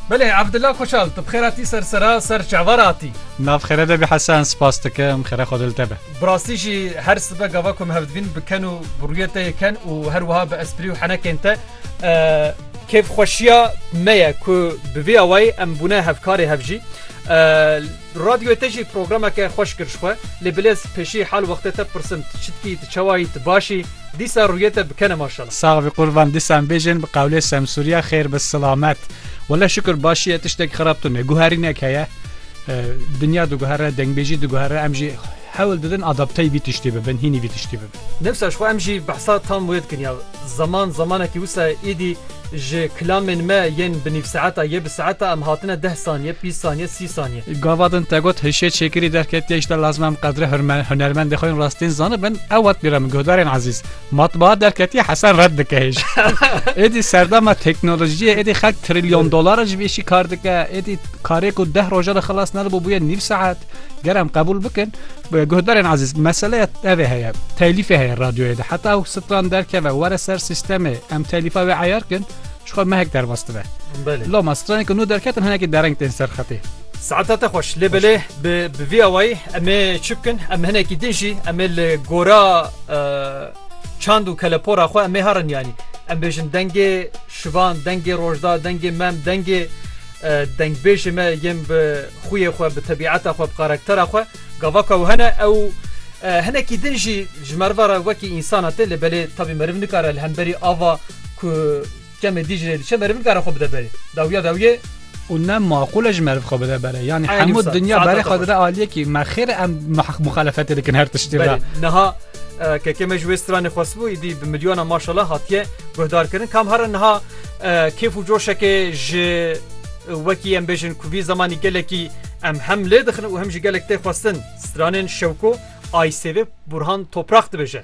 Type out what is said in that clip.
Belê Abdullah Koçal tu bixêra tî ser sera ser çavar atî. Nav xêre de bi Hesen spas dikim xêre xwe dil te be. Bi rastî jî her sibe gava ku em hevdivîn bi ken û bi rûyê te yê ken û her wiha bi esprî û henekên te kêfxweşiya me ye ku bi vî awayî em bûne hevkarê hev jî. Radyoyê te jî programeke xweş kir ji xwe lê bilêz pêşî hal wextê te pirsim tu çi dikî tu çawa yî tu baş î? Dîsa rûyê te bikene maşala. Sax bi qurban disan bêjin bi qewlê semsûriya xêr bi silamet. Wele şukur başî ye tiştek xerab tune guherînek heye dinya diguhere dengbêjî diguhere em jî hewl didin adaptey vî tiştî bibin hînî vî tiştî bibin. Newsa ji xwe em jî behsa tam wê dikin ya zaman zamanekî wisa ye îdî Ji klamên me yên bi nîvsaeta yê bi saeta em hatine deh saniye, bîst saniye, sî saniye. Gava din te got hişê çêkirî derketiye îşte lazim em qedrê hunermendê xwe yên rastîn zanibin ew wat bîra min guhdarên ezîz. Matbaa derketiye Hesen red dike hêj. Êdî serdama teknolojiyê êdî xelk trilyon dolara ji vê îşî kar dike êdî karê ku deh roja de xilas nedibo bûye nîv saet ger em qebûl bikin Guhdarên ezîz meseleya tevê heye telîfê heye radyoyê de heta ew stran derkeve were ser sistemê em telîfa wê eyar kin çixwe mehek derbas dibe Loma stranê ku nû derketin hinekî dereng tên ser xetê. Saeta te xweş lê belê bi bi vî awayî em ê çi bikin em hinekî din jî em ê li gora çand û kelepora xwe em ê herin yanî em bêjin dengê şivan dengê rojda dengê mem dengê Dengbêjê me yên bi xwiyê xwe, bi tebîeta xwe, bi karaktera xwe gava ku ew hene ew hinekî din jî ji meriva re wekî însan hate lê belê tabî meriv nikare li hemberî ava ku kemê dî ji rê diçe meriv nikare xwe bide berê. Dawiya dawiyê. Û ne maqûl e ji meriv xwe bide berê. Yanî Eyni hemû wisa. dinya Saeta berê te xwe xweş. dide aliyê kî me xêr e em muh- muxalefetê dikin her tiştî re. Belê. Niha e, kekê me ji wê stranê xwestibû îdî bi milyonan maşallah hatiye guhdarkirin. Kam here niha Kêf û coşekê ji wekî em bêjin ku vî zemanî gelekî em hem lê dixin û hem jî gelek tê xwestin. Stranên Şewko Aysêvê Burhan Toprak dibêje.